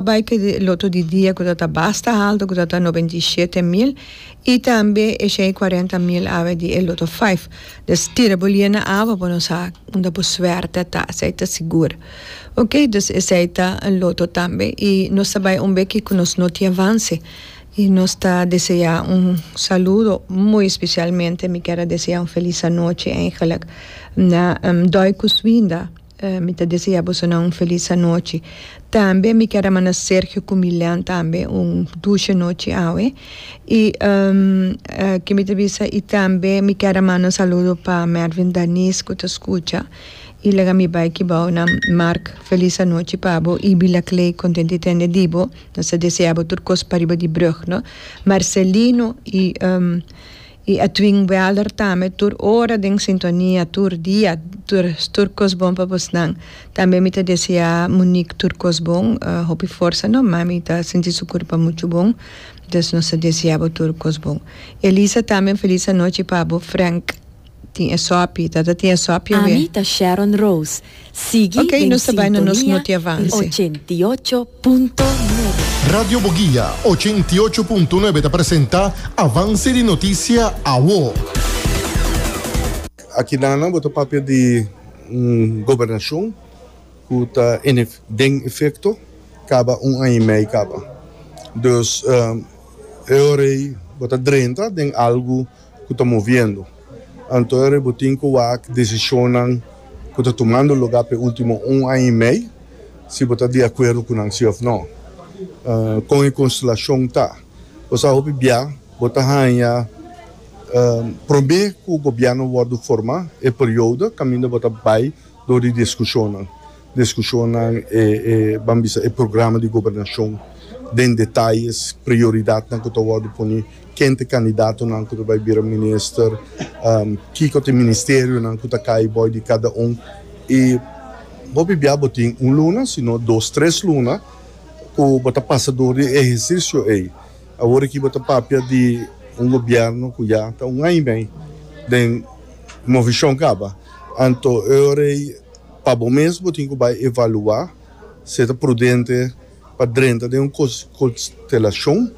bai te e loto di dia ku ta ta basta haltu ku ta ta noventa i shete mil i tambe e shen i kuarenta mil awe di e loto faif. Dus tira bo lie na awa pa no sa unda bo suerte ta, esei ta sigur. Ok, dus esei ta un loto tambe i nos ta bai un beki ku nos no tin avanse i nos ta deseá un saludo, muy especialmente mi ker a deseá un felis anochi, eigenlijk, na Doy Kuswinda. Mi ta desea bosonan un felis anochi. Tambe mi kier a manda Sergio cu Milean tambe un dushe nochi awe. Y ke mi ta bisa y tambe mi kier a manda un saludo pa Mervin Danis cu ta scucha y lega mi bay ki bou nan. Mark felis anochi pa bo y Bila Clay content di tende di bo. Nos ta desea bo tur cos pariba di brug no. Marcelino y. Y Edwin Welder tambe tur ora den sintonia tur dia tur tur cos bon pa bos nan tambe mi ta desea Monique tur cos bon hopi forsa no ma mi ta sinti su curpa mucho bon entonces nos ta desea bo tur cos bon Elisa tambe un feliz anochi pa bo Frank tin esopie tata tin esopie wee. Ami ta Sharon Rose. Sigui den sintonia di ochenta i ocho punto nuebe. Radio Boguia ochenta i ocho punto nuebe ta presenta Avance di Noticia Awo. Aki nan bo ta papia di un gobernacion cu ta den efecto caba un aña y mei caba. Dus e ora ey bo ta drenta den algo ku ta moviendo, anto e ributin ku wak desishonnan ku ta tumando lugá pa e último un aña i mei, si bo ta di akuerdo ku nan si òf nò. Kon e konstelashon ta? Bo sa hopi bia bo ta haña promé ku gobièrnu wòrdu forma e periodo kaminda bo ta bai dor di diskushonnan. Diskushonnan e ban bisa e programa di gobernashon den detayes, prioridatnan ku ta wòrdu pone, ken ta e kandidatonan ku ta bai bira minister, kiko ta e ministerionan ku ta kai bòi di kada un. I bo biabiá bo tin un luna sino dos, tres luna ku bo ta pasa dor di e ehersisio ei. Awor aki bo ta papia di un gobièrnu ku ya ta un aña i mei den movishon kaba. Anto e ora ei. Pa bo mes bo tin ku bai evaluá si e ta prudente pa drenta den un konstelashon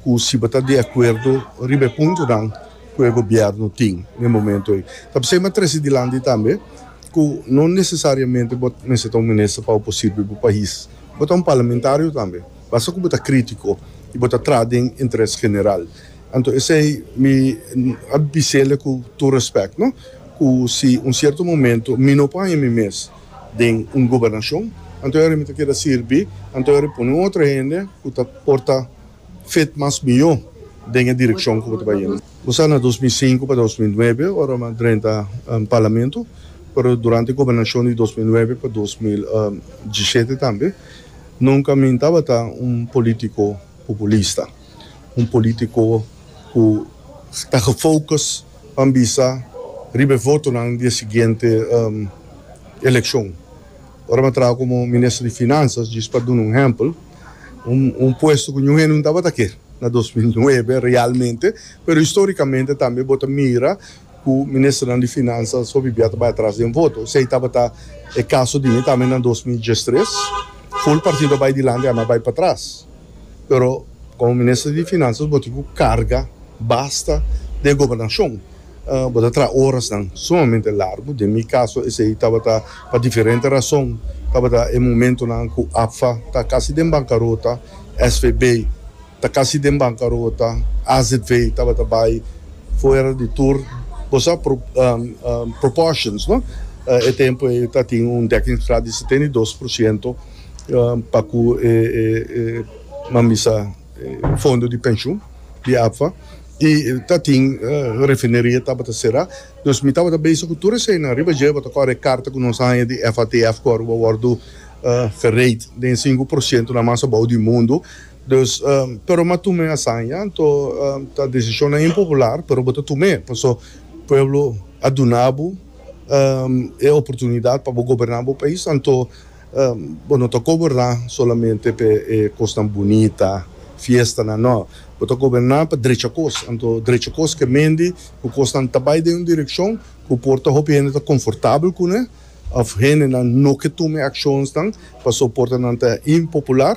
ku si bo ta di akuerdo riba e puntonan ku e gobièrnu tin na e momentu ei. Ta p'esei m'a trese dilanti tambe ku no nesesariamente bo mester ta un minister pa bo por sirbi bo pais. Bo ta un parlamentario tambe, basta ku bo ta krítiko i bo ta traha den interes general. Anto esei mi a bisel'e ku tur respèk no, ku si un sierto momento mi no por haña mi mes den un gobernashon, anto yari mi ta keda sirbi, anto yari pone un otro hende ku ta por ta fit mas mihó den e direkshon ku bo ta bai yendo. Bo sa na dos mil i sinku pa dos mil i nuebe ora mi a drenta Parlamento, pero durante e gobernashon di dos mil i nuebe pa dos mil i diesiete tambe, nunka mi no tabata un polítiko populista. un polítiko ku ta gefokus pa bisa riba e votonan di e siguiente elekshon. Ora mi a traha komo minister di Finansas, djis pa duna un ehèmpel, un puesto ku niun hende no tabata ke na dos mil nuebe realmente, pero histórikamente tambe bo ta mira ku ministernan di Finansas hopi bia ta bai atras den voto. Esei tabata e kaso di mi tambe na dos mil diestres, ful partido a bai dilanti ami a bai patras. Pero komo minister di Finanzas bo tin ku karga basta di e gobernashon. Bo ta traha orasnan sumamente largu. Den mi kaso esei tabata pa diferente rason. Tabata e momentunan ku APFA ta kasi den bankarota, SVB ta kasi den bankarota, azv tabata bai fuera di tur. Bo sa pro, proportions, no? E tempu ei ta tin un dekkingsgraad di setenta i dos por siento. pa ku e nan bisa fondo di penshun di APFA i ta tin refineria tabata será dus mi tabata bese ku tur eseinan riba dje bo ta kore e karta ku nos a haña di FATF ku Aruba wòrdu fereit den e sinku por sientunan mas abou di mundu dus pero mi a tuma e asaña anto ta desishonnan impopular pero bo ta tum'e paso pueblo a duna bo e oportunidat pa bo goberná bo pais anto. Bo no ta goberná solamente pa e kosnan bunita, fiestanan, nò. Bo ta goberná pa drecha kos. Anto drecha kos ke mendi ku kosnan ta bai den un direkshon ku por ta hopi hende ta konfortabel kuné òf hendenan no ke tuma e akshonsnan pasobra por ta nan ta impopular.